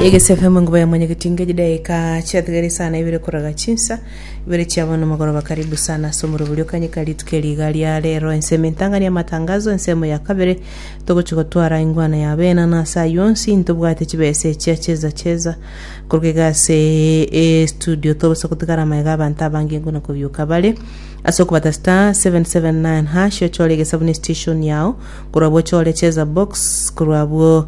Egese FM enguba ya mwenyegetinga chidaeka chiatigare isaa na ibere koraga chinsa ibere chia bono mogoroba karibu sana ase omoroberio kanyeka rituko eri iga ria rero ensemo entang'ani amatangazo ensemo ya kabere togochi gotwara ingwana ya benano ase ayio onsi ntobwate chibesa echia cheza cheza koruga iga ase estudio togosa gotigara amaega abanto abange nguna kobioka bare ase okobata star 779 hash ochore egesabu ne station yao korwa abwo ochore cheza box korwa abwo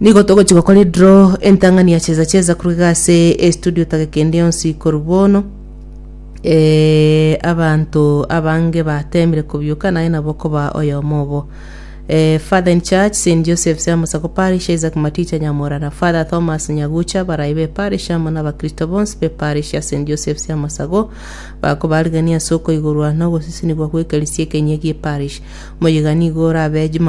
Nigo togochia gokora edraw entang'ani ya cheza cheza korwa iga ase estudio tage kende yonsi korwa bono eh, abanto abange batemire kobioka naye nabo okoba oyomo obo eh, father in church st joseph siamusako parish isaac maticha nyamorana father thomas nyagucha barai be parish amo na abakristo bonsi be parish ya st joseph siamosago bakobarigania ase okoigorwa na ogosisinigwa gwekerisia ekenyia gie parish moyega nigo orabe juma